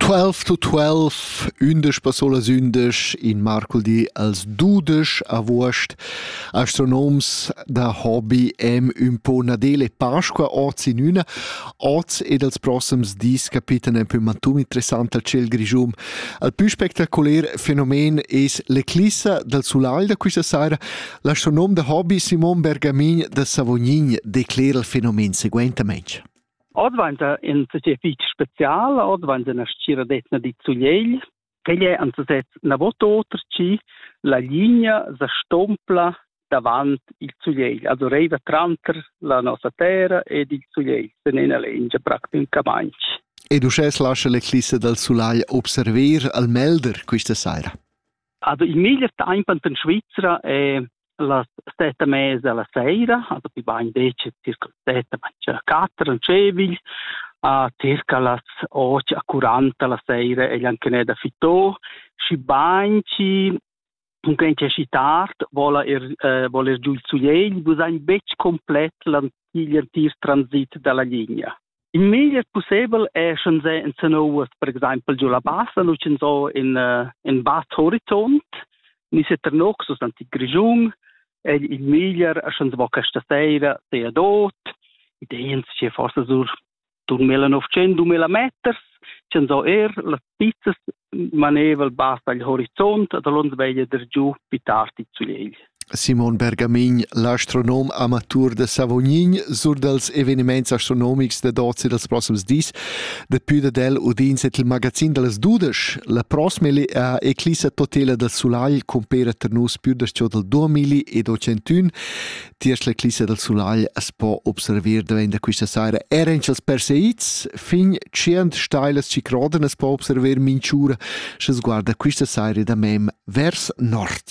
Twelve to twelve, ündesch passolas ündesch in marculdi als dudesch avuost. Astronoms da hobby am ün po Nadele Pasqua oz in üna. Oz ed als prossems dis capitan ein pü mantun interessant al ciel grischum. Al pü spectacular fenomen es l'eclissa dal sulagl da quista saira. L'astronom da hobby Simon Bergamin da Savognin declera il fenomen seguentamente. Oz dvainta in società fich special, oz dvainta üna stgiradetna dit Sugliegl. Quel è an sesez navot oter chi la linea sa stompla davant il Sugliegl, also reiva tranter la nossa terra ed il Sugliegl, sen ena lengia practi un camagn. Ed uschè lascia l'eclissa dal sulagl observer al Melder quista saira. Also il meglier temp in Svizra è las sette mese alla sera, also die waren decent circa sette, circa quattro cevil, uh, circa las 8 a 40 la sera e anche ne da fitò, și banci Dunque c'è tard, vola er, eh, voler giù il suiegl, bu sein betg complet l'antier transit dalla linea. In meglier pussebel è sch'ins è insanouas per exempel giu la bassa, nu sch'ins ho in, uh, in bas horizont, ni se Ternoc sus l'antic Grischun, è il meglier sch'ins vo questa sera sea dot, ideens che forse sur 2000-900 meters, sch'ins ho er las pizzas manevel basta il horizont da l'onda veglia der giu pitarti zulegl. Simon Bergamin, l'astronom amatur de Savognin, sur dels eveniments astronomics de dozi dels prossims dis, depui dad el udins et il magazin dels dudesch, la prosmeli a eclissa totela del sulagl compera ter nus più das ciò del duemili ed ocentuin, Tiers l'eclissa dal sulagl as po observer davent da quista saira er in chels perseids fin tschient stailas chi crodan as po observer minch'ura sche sguarda quista saira da mem vers nord.